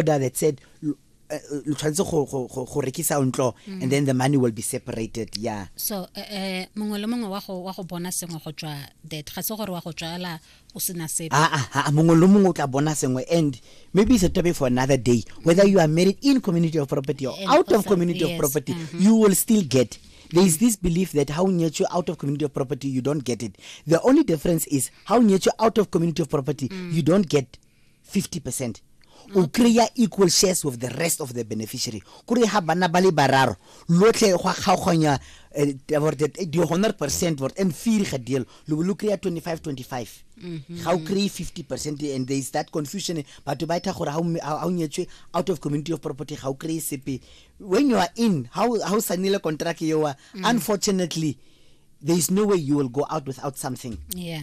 order that said lo eh, eh, lo tshwanetse go- go go- go rekisa ntlo Mm. and then the money will be separated yeah so eh, eh, mongwe le mongwe wa go wa go bona sengwe go tswa that ga se gore wa go tswala o sena sepe Ah, ah, ah, mongwe le mongwe o tla bona sengwe and maybe it's a topic for another day whether you are married in community of property or And out of also- community of yes, property mhm. you will still get there is this belief that how nyetswe out of community of property you don't get it the only difference is how nyetswe out of community of property you don't get 50% o kry-a equal shares with the rest of the beneficiary kore ga bana ba le bararo lotlhe go a kgaoganya eh, di 100 percent vort and firi ga deal lo bo lo kry-a 25 25 mhm. ga o kry-e 50 percent and there is that confusion batho ba etha gore ga o nyetswe out of community of property ga o kry-e sepe when you are in ga o sanile contract eoa mm. unfortunately there is no way you will go out without something yeah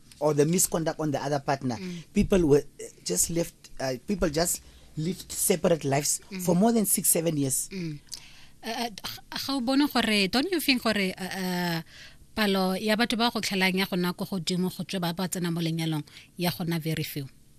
or the misconduct on the other partner mm. people were uh, just left uh, people just lived separate lives mm. for more than 6 7 years mm. uh, uh, bona gore don't you think gore uh, uh, palo ya batho ba go tlhelang ya gona ko godimo go tswe ba ba tsena mo lenyalong ya gona very few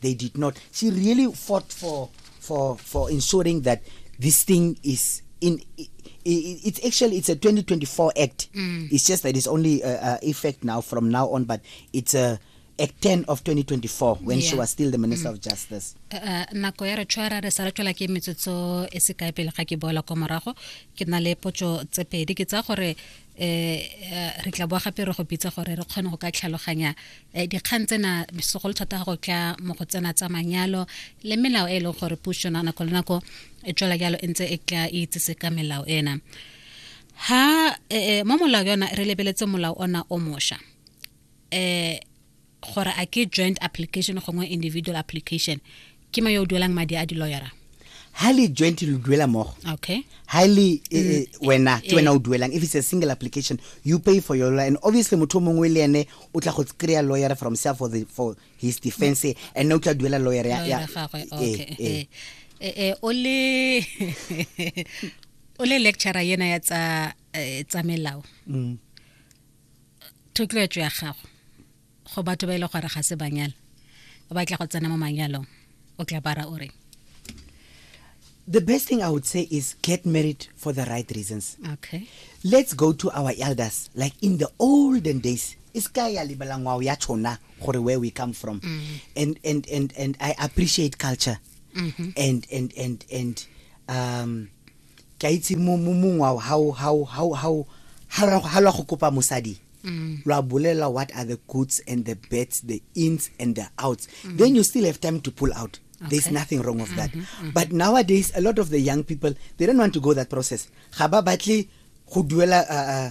They did not. She really fought for for for ensuring that this thing is in it's actually it's a 2024 act mm. it's just that it's only uh, uh, effect now from now on but it's a act 10 of 2024 when yeah. she was still the minister mm. of justice uh, uh, nako ya re tshwara re sa re tswela ke metsotso e se kae pele ga ke boela kwa morago ke na le potso tse pedi ke tsa gore eh, eh re tla boa gape re go bitsa gore re kgone go ka tlhaloganya eh, dikgang tsena segolo thata go tla mo go tsena tsa manyalo le melao e e leng gore puso na nako le nako e tswela jalo e ntse e tla e itsese ka melao ena ha eh, eh mo molao yona re lebeletse molao ona o mosha eh gore a ke joint application gongwe individual application ke ma yo o duelang madi a di-lawyera ha le joint lo duela mogo okay ha le eh, mm. eh, wena ke wena o duelang if it's a single application you pay for your lawyer and obviously motho mongwe le ene o tla go kry-a lawyer from self for, the, for his defense mm. and o tla duela lawyer ya ya eh, eh o le o le lecturer yena ya tsa tsa melao mm. thotloetso ya gago go batho ba ile e gore ga se banyala o batla go tsena mo manyalong o tla bara o reng the best thing I would say is get married for the right reasons. Okay. Let's go to our elders, like in the olden days. Iskaya libalangwa ya chona where we come from. Mm -hmm. And and and and I appreciate culture. Mm -hmm. And and and and um ke a itse mo mo- mongwe wa ha o- ha o- ha o- ha o- ha lo- ha lo ya go kopa mosadi lo a bolelela what are the goods and the bets the ins and the outs then you still have time to pull out there's Okay. nothing wrong of that but nowadays a lot of the young people they don't want to go that process ga ba batle go duela uh, uh,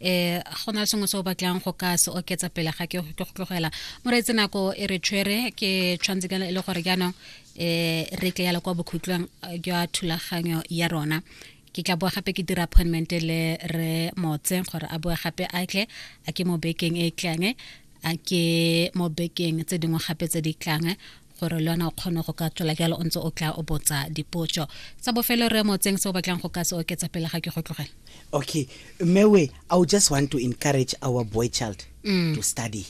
eh go na sengwe se o batlang go ka se oketsa pele ga ke go tlogela moreetse nako e re tshwere ke tshwanetse ka e le gore jaanong eh re tle yala kwa bokhutlong eh, jwa thulaganyo ya rona ke tla boa gape ke dira appointment le re motse gore a boe gape a tle a ke mo bekeng e tlang a ke mo bekeng tse dingwe gape tse di tlang gore le yona o kgone go ka tswela jalo o ntse o tla o botsa dipotso tsa bofelo re mo tseng se o batlang go ka se oketsa pele ga ke go tlogela okay mewe i would just want to encourage our boy child mm. to study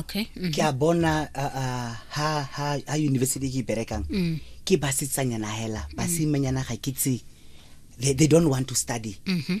okay mm -hmm. ke a bona uh, uh, ha, ha, ha university ke berekang mm. ke basetsanyana hela mm. basimanyana ga ke tse they, they don't want to study mm -hmm.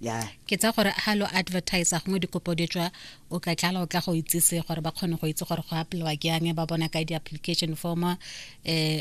ya ke tsa gore ha lo advertise gongwe dikopo di tswa o ka tlala o tla go itsise gore ba kgone go itse gore go apelwa ke yang ba bona ka di-application form uh,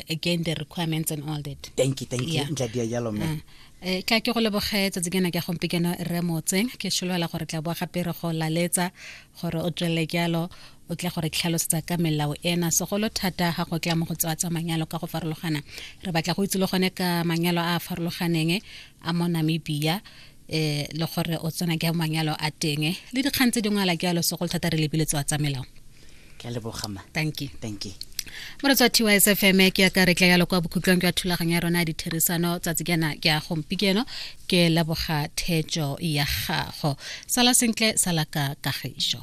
again the requirements and all that thank you thank you ntla dia jalo mme mm. eh, ka ke go leboge tsatsi kena ke gompikeno re motseng ke solofela gore tla boa gape re go laletsa gore o tswelele jalo o tla gore tlhalosetsa ka melao ena segolo thata ga go tla mo go tsewa tsa manyalo ka go farologana re batla go itse le gone ka manyalo a a farologaneng a mo namibia eh le gore o tsena ke manyalo a teng le dikgang tse dingwe ala ke alo segolo thata re lebile tswa tsa melao ke a lebogama thank you thank you moretsa tys fm ke ya ka re tla yalo kwa bokhutlong ke ya thulaganyo ya rona ya ditherisano tsatsi kena ke ya gompikeno ke leboga thejo ya gago sala sentle sala ka kagišo